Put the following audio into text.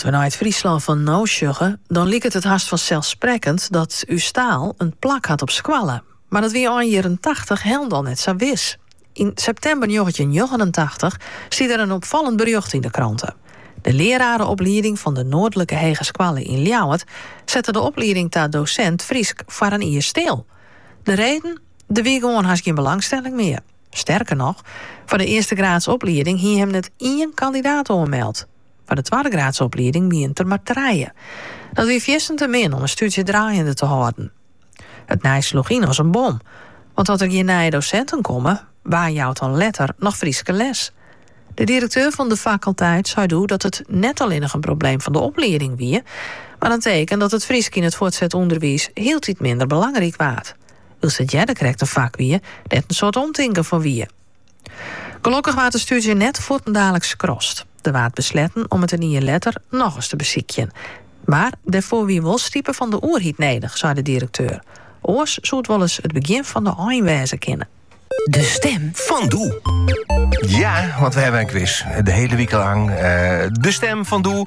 As we nei it Fryslân fan no sjogge, dan liket it hast fanselsprekkend dat ús taal in plak hat op skoalle. Mar dat wie ein jierren tachtich hielendal net sa wis. Yn septimber njoggentjinhûndertnjoggenentachtich stie der in opfallend berjocht yn de krante. De learareoplieding fan de Noardlike Hegeskoalle yn Ljouwert sette de oplieding ta dosint Frysk foar in jier stil. De reden? Der wie gewoan hast gjin belangstelling mear. Sterker noch, foar de earstegraadsoplieding hie him net ien kandidaat oanmeld. Foar de twaddegraadsoplieding wienen der mar trije. Dat wie fierstend te min om in stúdzje draaiende te hâlden. It nijs sloech yn as in bom, want as der gjin nije dosinten komme, wa jout dan letter noch Fryske les? De direkteur fan de fakulteit sei doe dat it net allinnich in probleem fan de oplieding wie, mar in teken dat it Frysk yn it fuortset ûnderwiis hieltyd minder belangryk waard. Wylst it earder krekt in fak wie dêr't in soad omtinken foar wie. Gelokkich waard de stúdzje net fuortendaliks skrast. Der waard besletten om it in jier letter noch ris te besykjen. Mar dêrfoar wie wol stipe fan de oerheid nedich, sei de direkteur. Oars soe it wolris it begjin fan de ein wêze kinne. De stim fan Doe. Ja, want we hawwe in kwis. De hiele wike lang. Eh, de stim fan Doe.